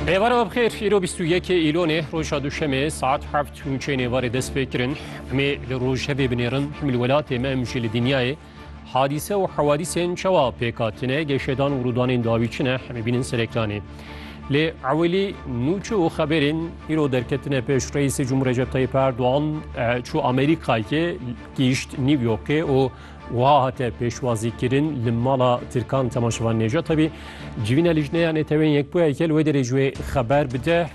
Êvareva bixêr îro bîst û yekê îlonê roja duşemê saet heft û çênê varê dest pê kirin. Emê li rojevê binêrin him li welatê me em jî li dinyayê hadîse û hewadîsên çawa pêk hatine geşedan û rûdanên dawî çi ne hemê bînin sereklanê. Lê ewilî nûçe û xeberên îro derketine pêş Reîsê Cumhur Recep Tayyip Erdoğan çû Amerîkayê gihîşt New Yorkê û Wiha hate pêşwazîkirin li mala Tirkan Temaşevan Nêcatebî civîna lijneya Netewên Yekbûyayeke li wê derê ji wê xeber bide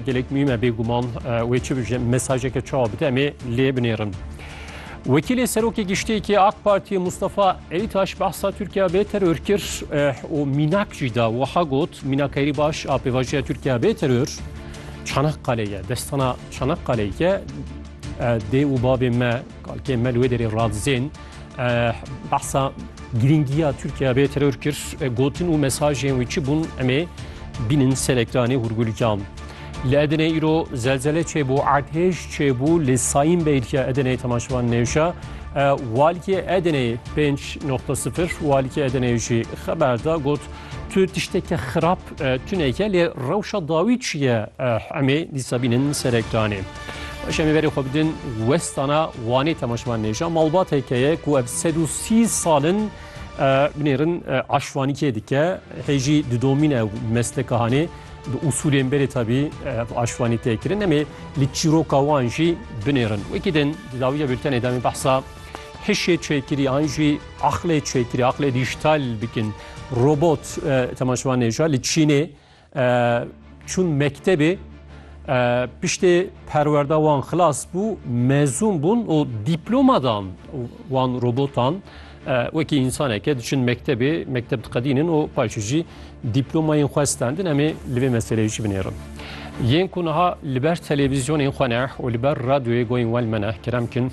gelek mîm e bêguman wê çi bije mesajeke çawa bide em ê lê binêrin. Wekîlê Serokê Giştiyekî AK Partiyê Mustafa Elîtaş behsa Tirkiya bê teror kir û mînak jî da wiha got mînakerî baş a pêvajoya Tirkiya bê teror Çanakkale ye destana Çanakkale ye dê û bavê me Kalkê me li wê derê radizên behsa girîngiya Tirkiye bê teror kir, gotin û mesajên wî çi bûn emê bînin serekdanê hûrgulîkan. Li Edenê îro zelzele çêbû, erdhêj çêbû li Sayîn Beytya Edenê temaşevan nêşa. Walkê Edenê 5.0 walkê Edenê jî xeber da got tu tişteke xirab tuneke lê rewşa dawî çi ye emê dîsa bînin serekdanê. Şemêverê xwe bi din westana Wanê temaşevan nêja malbat hekeye ku ev sed û sî sal in binêrin aşvanîkê dike hê jî di domîn ew mesleka hanê bi usulên berê tabî aşvanî tê kirin em ê li çîroka wan jî binêrin wekî din di dawiya bültenê demê behsa hişê çêkirî an jî aqlê çêkirî aqlê dîjtal bikin robot temaşevan nêja li Çînê Çûn mektebê piştê perwerda wan xilas bû, mezûn bûn û dîploma dan wan robotan. Wekî însaneke diçin mektebê, mekteb diqedînin û paşê jî dîplomayên xwe stendin. Em ê li vê meseleyê jî binêrin. Yên ku niha li ber televîzyonên xwe ne û li ber radyoyê goyên we li me ne, kerem kin.